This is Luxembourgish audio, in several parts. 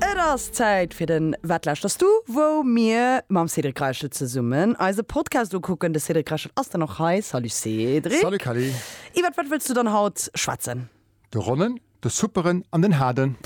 Et ass Zäit fir den Wat lauschters du? wou mir mam Cédric Reichel zesummen eise Podcast ukucken. De Cédric Reichel ass dann och hei. Salut Cédric. Salut Kelly. Iwwert wat wëlls du dann haut schwätzen? De Ronnen, de Supperen an den Haarden.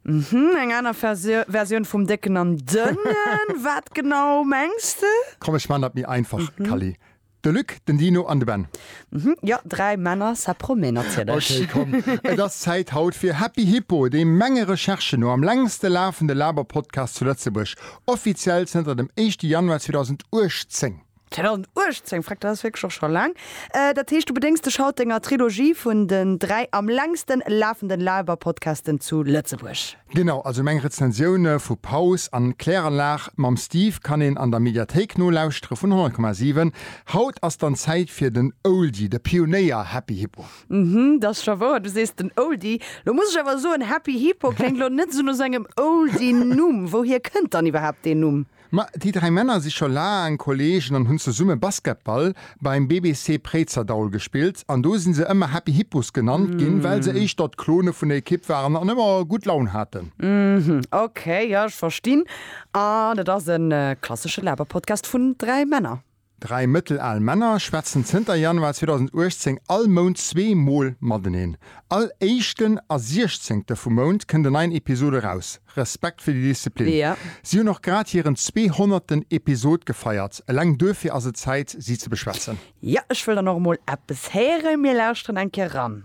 Mhm, eng aner Versioun vum Décken an Dënnen. Wat genau mengs de? Komm ech maan dat méi einfach Kelly. De Luc, den Dino an de Ben. Mhm, jo, dräi Männer, ça promet natierlech. Ok, komm, et ass Zäit haut fir Happy Hippo, dee menge Recherchen no am längste lafende Laber-Podcast zu Lëtzebuerg, offiziell zënter dem éischte Januar 2018. 2018, freck, dat ass wierklech och scho laang. Dat heescht, du bedéngs dech haut denger Trilogie vun den dräi am längste lafenden Laber-Podcasten zu Lëtzebuerg. Genau, also meng Rezensioune vu Paus an Kläranlag mam Steve kann een an der Mediathéik nolauschtere vun 100,7. Haut ass dann Zäit fir den Oldie, de Pionéier Happy Hippo. Mhm, 't ass scho wouer, du sees den Oldie. Lo muss ech awer soen, Happy Hippo kléngt lo net esou no sengem Oldie-Numm. Wouhier kënnt dann iwwerhaapt deen Numm? Ma déi dräi Männer si scho laang Kollegen an hunn zesumme Basketball beim BBC Préizerdaul gespillt an do si se ëmmer Happy Hippos genannt ginn, well se éischter d'Klone vun der Ekipp waren an ëmmer gutt Laun haten. Uhmm, ok, jo ech verstinn. An et ass e klassesche Laberpodcast vun dräi Männer. Dräi mëttelal Männer schwätzen zënter Januar 2018 all Mount zwee Mol mateneen. All éischten a siechzéngte vum Mount kënnt en neien Episod eraus. Respekt fir déi Disziplin. Si hunn och grad hiren zweehonnerten Episod gefeiert. Eleng duerfir ass et Zäit, si ze beschwätzen. Jo, ech wëll dann och emol eppes héieren. Mir lauschteren eng Kéier eran.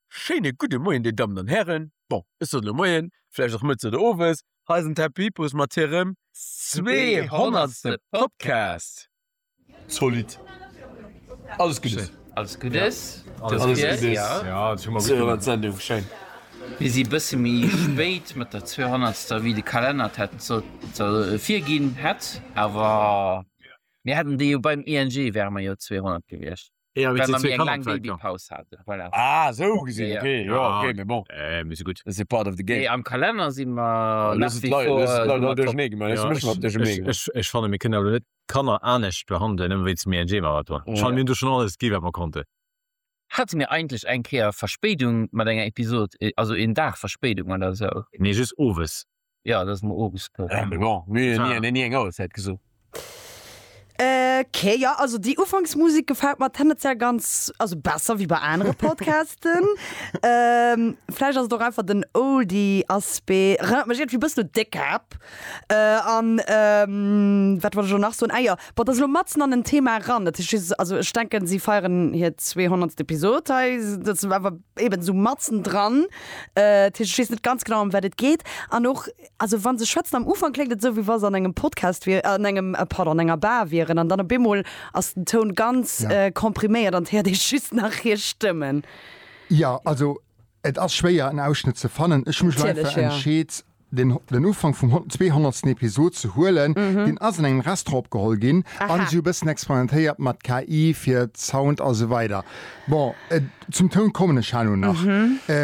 Schéine gudde Moien, Dir Dammen an Hären. Bon, ech sot elo Moien, vläicht och Mëtz oder Owes. Hei ass en Tab Vipus mat hirem zweehonnertste Podcast. Zolidd. Alles Guddes. Alles Guddes. Alles Guddes. Zweehonnert Sendung, schéin. Mir si e bësse méi spéit mat der zweehonnertster, wéi de Kalenner et hätt sollte virginn hätt, awer mir hätten déi jo beim ING, wäre mer jo zweehonnert gewiescht. Ja, Well ma mir eng laang Babypaus hate, voilà. Ah, esou gesinn, Ja, ja. okay, jo, Ja. okay, mee bon, Äh, mee se gutt. dat ass jo part of the Nee, game. am Kalenner si mer nach Looss et wie lei- vor, looss et leit Nummer all top. duerchernee gemeet, ech Ja, méche mer ech, duerchernee ech, gemeet. ech, ech fanne mir kënnen awer net d'Kanner anescht behandelen, nëmme wéinst dem ING-Marathon. Ech Ja. fanne mir hunn do schonn alles gi wat mer konnten. Hate mir eigentlech eng Kéier Verspéidung mat enger Episod, e- also een Dag Verspéidung oder esou? Nee, just owes. Ja, dat ass mer ofgespillt. Ah, mais bon, mir hun ni, ni eng Auerzäit gesot. Okay, ja, also déi Ufanksmusik gefällt mer tendenziell ganz, also besser wéi bei anere Podcasten. ähm, vläicht ass et och einfach den Oldie-Aspect. Erënnert mech irgendwie bëssen un Décap. Äh, an ähm, wat wollt ech lo nach soen? Ah ja, boah, dat ass lo matzen an en Thema eran. Dat heescht, also ech denken, si feieren hir 200. Episod hei. Dat ass awer eben esou matzen dran dat heescht ech weess net ganz genau ëm wat et geet an och also wann se schwätzen am Ufank kléngt et esou wéi wa se an engem Podcast wier an engem pardon an enger Bar wieren an dann op eemol ass den Toun ganz kompriméiert an et héiert ee just nach hir Stëmmen. Jo, also et ass schwéier en Ausschnëtt ze fannen. Ech hu mech leifer entscheet den den Ufank vum hon zweehonnertsten Episod ze huelen. Deen ass an engem Restaurant opgeholl ginn an si hu e bëssen experimentéiert mat KI fir Sound a sou weider. Bon, zum Toun kommen ech herno nach.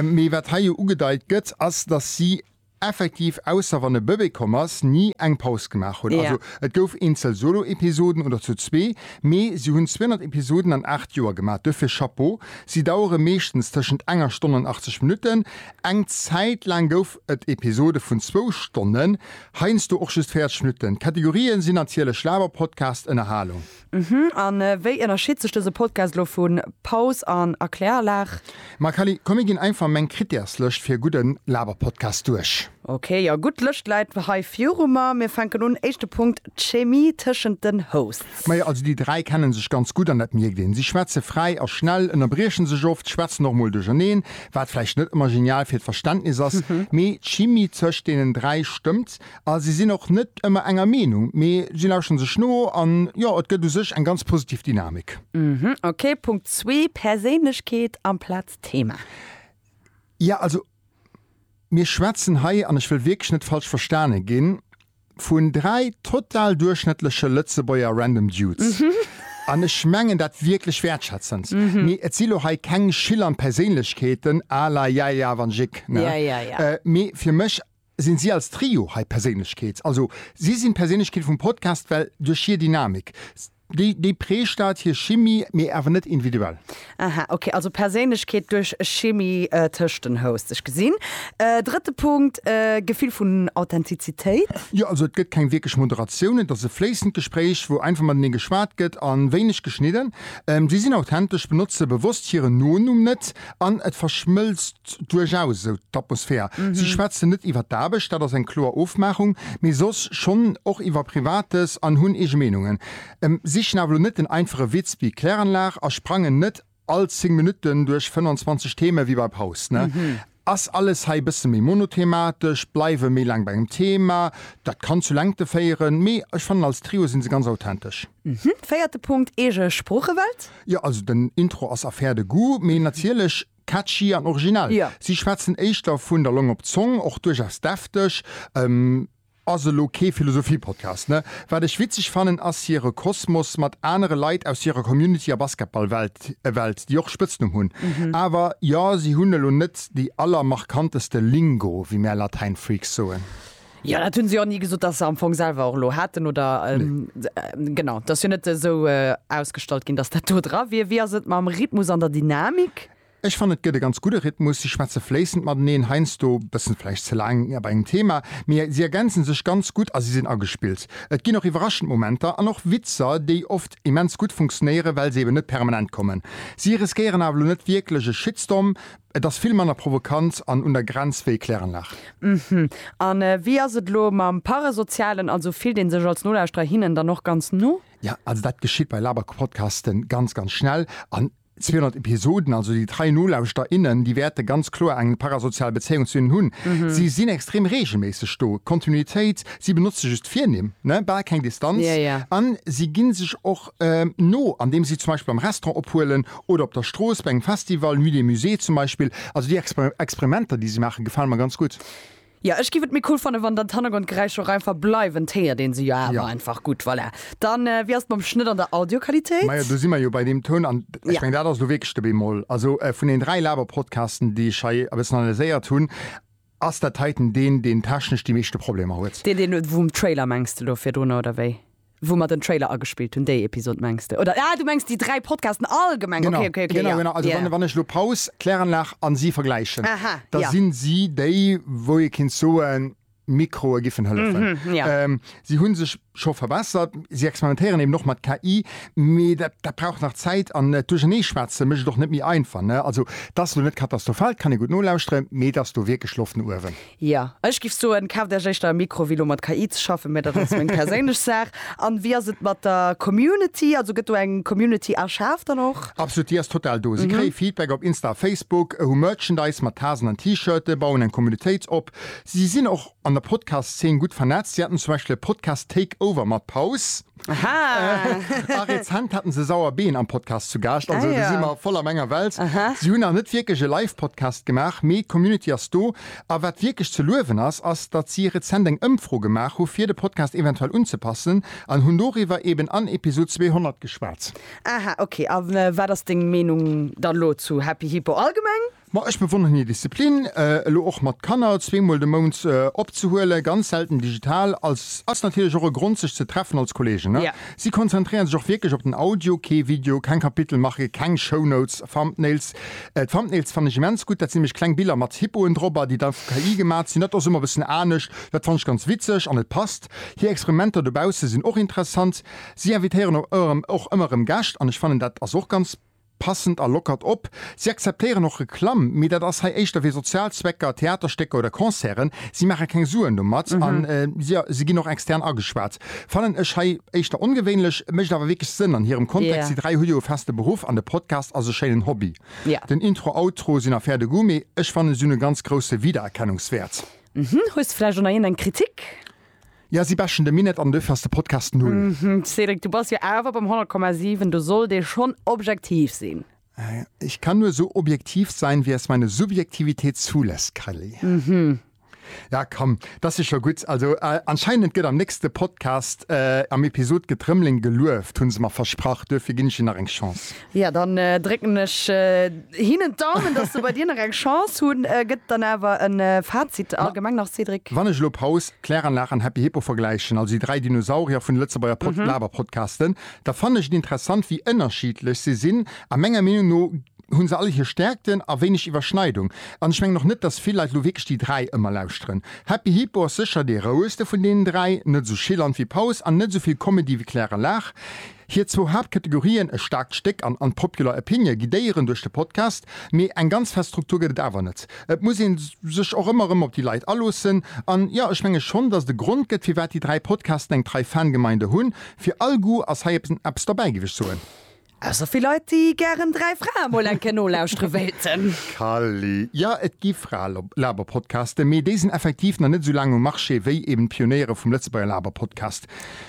Mee wat hei jo ugedeit gëtt, ass, datt si effektiv, ausser wann e Bëbee komm ass, ni eng Paus gemaach hunn. Also et gouf eenzel Solo-Episoden oder zu zwee, mee si hunn 200 Episoden an 8 Joer gemaach. Duerfir Chapeau. Si dauere meeschtens tëschent enger Stonn an 80 Minutten. Eng Zäit laang gouf. et Episode vun zwou Stonnen, heiansdo och just 40 Minutten. D'Kategorien sinn natierlech Laber, Podcast, Ënnerhalung. Mhm, an wéi ënnerscheed sech dëse Podcast lo vun Paus an Erkläranlag? Ma Kally, komm mir ginn einfach meng Krittärslëscht fir e gudden Laberpodcast duerch. Ok, jo gutt, d'Lëscht läit hei viru mer. Mir fänken un, éischte Punkt, d'Chemie tëschent den Hosts. Majo, also déi dräi kennen sech ganz gutt an dat mierkt een. Si schwätze fräi a schnell, ënnerbriechen sech oft, schwätzen och mol duercherneen, wat vläicht net ëmmer genial fir d'Verständnis ass, mee d'Chimie tëscht deenen dräi stëmmt a si sinn och net ëmmer enger Meenung, mee si lauschteren sech no an jo, et gëtt u sech eng ganz positiv Dynamik. Ok, Punkt zwee, Perséinlechkeet amplaz Thema. Jo, also mir schwätzen hei, an ech wëll wierklech net falsch verstane ginn, vun dräi total duerchschnëttleche Lëtzebuerger Random Dudes. An ech mengen dat wierklech wäertschätzend. Mee et si lo hei keng schillernd Perséinlechkeeten à la Yaya van Jik, ne? Mee fir mech si si als Trio hei d'Perséinlechkeet. Also si sinn d'Perséinlechkeet vum Podcast, well duerch hir Dynamik, Déi, déi prägt dat, hir Chimie, mee awer net individuell. Aha, ok. Also Perséinlechkeet duerch Chimie tëscht den Hosts. Ech gesinn. Drëtte Punkt, Gefill vun Authentizitéit. Jo, also et gëtt keng wierklech Moderatioun. Et ass e fléissend Gespréich, wou einfach matenee geschwat gëtt a wéineg geschnidden. Si sinn authentesch, benotze bewosst hiren Nonumm net an et verschmëlzt. Duerchaus, esou d'Atmosphär. Si schwätzen net iwwer d'Aarbecht, dat ass eng kloer Ofmaachung, mee soss schonn och iwwer Privates an hunn eege Meenungen. Em sichen awer elo net den einfache Witz wéi Kläranlag a sprangen net all 10 Minutten duerch 25 Theme wéi bei Proust. Ass alles hei e bësse méi monothematesch, bleiwe méi laang bei engem Thema, dat kann zu Längte féieren, mee ech fannen als Trio si se ganz authentesch. Véierte Punkt, eege Sproochewelt. Jo, also den Intro ass affaire de goût, mee natierlech Catchy an originell. Jo. Si schwätzen éischter vun der Long op d'Zong, och duerchaus defteg. Ass elo kee Philosophie-Podcast, ne? Wat ech witzeg fannen, ass hire Kosmos mat anere Leit aus hirer Community a Basketball-Welt, Welt, déi och Spëtznumm hunn. Awer jo, si hunn elo net déi allermarkanteste Lingo, wéi mär Latäin-Freaks soen. Jo, dat hunn se jo och ni gesot, datt se am Fong selwer och elo haten oder genau, dat ass jo net esou ausgestallt ginn, datt dat do dra wier. Wéi ass et mam Rhythmus an der Dynamik? Ech fannen, et gëtt e ganz gudde Rhythmus. Si schwätze fléissend mateneen, heiansdo e bëssen vläicht ze laang bei engem Thema, mee si ergänze sech ganz gutt a si sinn agespillt. Et ginn och iwwerraschend Momenter an och Witzer, déi oft immens gutt funktionéieren, well se eben net permanent kommen. Si riskéieren awer elo net wierklech e Shitstorm, Et ass vill manner provokant an un der Grenz wéi Kläranlage. Hm, an wéi ass et elo mam Parasozialen? Also fillt een sech als Nolauschterer hinnen dann och ganz no? Ja, also dat geschitt bei Laberpodcasten ganz, ganz schnell. An 200 Episoden, also déi trei Nolauschter, innen, déi wäerte ganz kloer eng parasozial Bezéiung zu hinnen hunn. Si sinn extrem reegelméisseg do, Kontinuitéit, si benotze just Virnimm, ne, bal keng Distanz, an si gi sech och no, andeem si zum Beispill am Restaurant ophuelen oder op der Strooss bei engem Festival, Nuit des Musées zum Beispill. Also déi Experimenter, déi si maachen, gefalen mer ganz gutt. Jo, ech giff et méi cool fannen, wann dann d'Hannergrondgeräischer och einfach bleiwen. D'héiert een se jo awer einfach gutt. Voilà. Dann, wéi ass et mam Schnëtt an der Audioqualitéit? Majo, do si mer jo bei deem Toun, an ech mengen, dat ass elo wierklech de Bémol. Also vun den dräi Laber-Podcasten, déi ech hei e bëssen analyséiert hunn, Ass dat heiten deen, deen technesch déi meeschte Problemer huet? Deen deen vum Trailer mengste lo virdrunner oder wéi? Wou mer den Trailer agespillt hunn, déi Episode mengst de? Oder ah du mengs déi 3 Podcasten allgemeng? Genau, okay, okay, genau, genau. Also yeah. wann ech lo Paus, Kläranlag an si vergläichen, Aha, da ja. sinn si déi wou ee kinnt soen, Mikroe giffen hëllefen. Mhm, ja. ähm, si hunn sech scho verbessert. Si experimentéieren eben och mat KI, mee dat dat brauch nach Zäit an et duercherneeschwätze mécht et och net méi einfach, ne? Also et ass elo net katastrofal, et kann ee gutt nolauschtere, mee et ass do wierklech Loft no uewen. Jo, ech giff soen, kaaft Äech éischter e Mikro wéi elo mat KI ze schaffen, mee dat ass meng perséinlech Saach. An wéi ass et mat der Community? Also gëtt do eng Community erschaf dann och? Absolut, déi ass total do. Si kréie Feedback op Insta a Facebook, hu Merchandise mat Tasen an T-Shirte, bauen eng Communitéit op. Si sinn och an der Podcast-Szene gutt vernetzt. Si haten zum Beispill e Podcast Take Over mat Paus. Aha! A rezent haten se Sauerbeen am Podcast zu Gaascht. Also, do si mer voll am enger Welt. Si hunn nach net wierklech e Live-Podcast gemaach, mee d'Community ass do. A wat wierklech ze luewen ass, ass, datt si rezent eng Ëmfro gemaach hu fir de Podcast eventuell unzepassen an hunn doriwwer eben an Episod 200 geschwat. Aha, okay. A wat ass deng Meenung dann elo zu Happy Hippo allgemeng? Ma ech bewonneren hir Disziplin, elo och mat Kanner zwee mol de Mount opzehuelen, ganz selten digital. Als ass natierlech och e Grond sech ze treffen als Kollegen. Si konzentréieren sech och wierklech op den Audio, kee Video, keng Kapitelmarke, keng Shownotes, Thumbnails. D'Thumbnails fannen ech immens gutt, dat sinn nämlech kleng Biller mat Hippoen drop a déi da vu KI gemat sinn. Dat ass ëmmer e bëssen anescht, dat fannen ech ganz witzeg an et passt. Hir Experimenter dobausse sinn och interessant. Si invitéieren och ëmmer erëm Gäscht an ech fannen dat ass och ganz. Passend a lockert op. Si akzeptéieren och Reklamm, mee dat ass hei éischter fir sozial Zwecker, Theaterstécker oder Concerten. Si maache keng Suen domat a jo, si ginn och extern ageschwat. Fannen ech hei éischter ongewéinlech, mécht awer wierklech Sënn an hirem Kontext. Déi dräi hu jo e feste Beruff an de Podcast ass e schéinen Hobby. Den Intro, Outro sinn affaire de goût, mee ech fannen, si hunn e ganz grousse Wiedererkennungswäert. Hues de vläicht och nach iergendeng Kritik? Ja si bashen de Minett an duerfir ass de Podcast null. Hm Cédric, du bass jo awer beim 100,7, du sollt ee schonn objektiv sinn. Ich kann nur so objektiv sein wie es meine Subjektivität zulässt, Kelly. Hm. Ja komm, dass si scho gutt. Also anscheinend gëtt am nächste Podcast am Episod Getrëmmelen gelueft, hu se mer versprach. Duerfir ginn ech hir nach eng Chance. Jo, dann drécken ech hinnen d'Daumen, dass se bei dir nach eng Chance hunn. Gëtt dann awer e Fazit allgemeng nach, Cédric? Wann ech elo Paus, Kläranlag an Happy Hippo vergläichen, also déi dräi Dinosaurier vun de Lëtzebuerger Pod Laberpodcasten, da fannen ech et interessant, wéi ënnerschiedlech se sinn. A menger Meenung no hu se all hir Stäerkten a wéineg Iwwerschneidung. An ech mengen och net, dass vill Leit elo wierklech déi dräi ëmmer lauschteren. Happy Hippo ass sécher dee rouegste vun deenen dräi, net esou chillant wéi Paus an net esou vill Comedy wéi Kläranlag. Hir zwou Haaptkategorien, e staarkt Stéck an an d'Popular Opinion, guidéieren duerch de Podcast, mee eng ganz fest Struktur gëtt et awer net. Et muss ee sech och ëmmer erëm op déi Leit aloossen. An jo, ech menge schonn, datt et e Grond gëtt, firwat déi dräi Podcasten eng trei Fangemeinde hunn. Fir all Goût ass hei eppes derbäi, géif ech soen. Ausser fir Leit, déi gären dräi Frae mol eng Kéier nolauschtere wéilten. Kally, Jo, et gi Frae-Laberpodcasten, mee déi sinn effektiv nach net esou laang um Marché wéi eben d'Pionéiere vum Lëtzebuerger Laberpodcast.